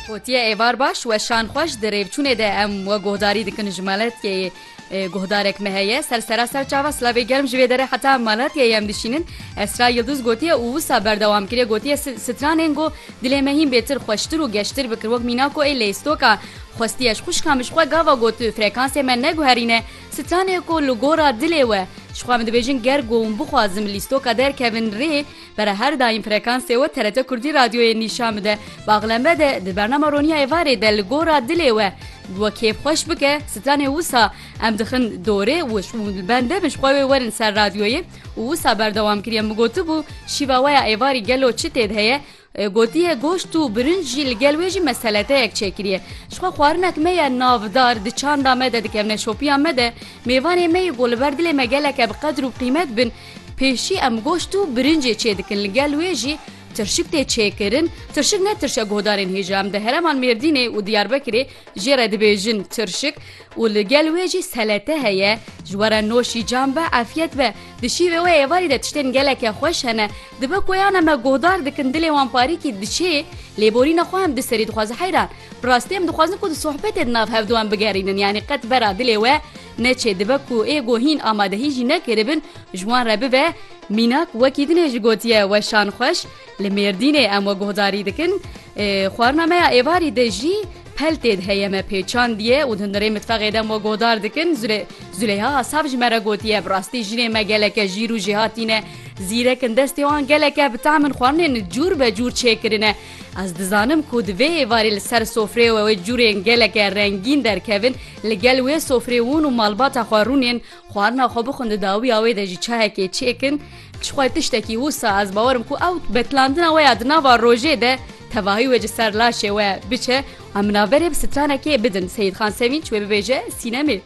Gotiye êvar baş weşan xwe ji di rêvçûnê de em we guhdarî dikin ji Malatyayê guhdarek me heye ser sera ser çava slavê germ ji vê dere heta Malatyayê em dişînin Esra Yildiz gotiye û wisa berdewam kiriye gotiye stranên got dilê me hîn bêtir xweştir û geştir bikir wek mîna ku ê lêstoka xwestiye ji xuşka min ji xwe gava got frekansê me neguherîne stranê ku li gora dilê we ji xwe min dibêjin ger got bixwazim lîstoka derkevin rê Pere her daîm frekansê we TRT Kurdî Radyoyê nîşan bide. Baxlembe de di bernama Ronîya Êvarê de li gora dilê we bi we kêf xweş bike, sitanê wisa em dixin dorê û li bende min ji xwe wê werin ser radyoyê û wisa berdewam kiriye min gotibû şîva we ya êvarî gelo çi tê de heye? Gotiye goşt û birinc jî li gel wê jî me seleteyek çêkiriye. Ji xwe xwarinek me ye navdar di çanda me de dikevne şopiya me de mêvanê me yê ku li ber dilê me geleke bi qedir û bi qîmet bin, Pêşî em goşt û birincê çêdikin li gel wê jî tirşik tê çêkirin, tirşik ne tirşa guhdarên hêja em di hereman Mêrdînê û Diyarbekirê jê re dibêjin tirşik û li gel wê jî selete heye ji we re noşî cam be efyet be di şîvê wê êvarî de tiştên geleke xweş hene dibe ku yan em guhdar dikin dilê wan parîkî diçê lêborîna xwe em di serî dixwaze heyran bi rastî em dixwazin ku di sohbetê di nav hevdû em bigerînin yanî qet vera dilê we Neçê dibe ku ê ku hîn amadehî jî nekiribin ji wan re bibe, mînak wekî din e jî gotiye weşan xweş li Mêrdînê em we guhdarî dikin. Xwarina me ya êvarî de jî peltê di heye me pêçandiye û di hundirê mitfexê de em we guhdar dikin. Züleyha Asaf ji me re gotiye bi rastî jinê me geleke jîr û jêhatî ne, zîrek in destê wan geleke bi tahmin xwarinên cûr be cûr çêkirin e. Ez dizanim ku di vê êvarê li ser sofrê we wê curên geleke rengîn derkevin, li gel wê sofrê wûn û malbata xwe rûnên, xwarina xwe bixwin di dawiya wê de jî çayekê çêkin, çixwe tiştekî wisa ez bawer im ku ew betlandina we ya di nava rojê de tevahî wê ji ser laşê we biçe, em bi navberê bi stranekê bidin Seyîdxan Sevînç wê bibêje sînemê.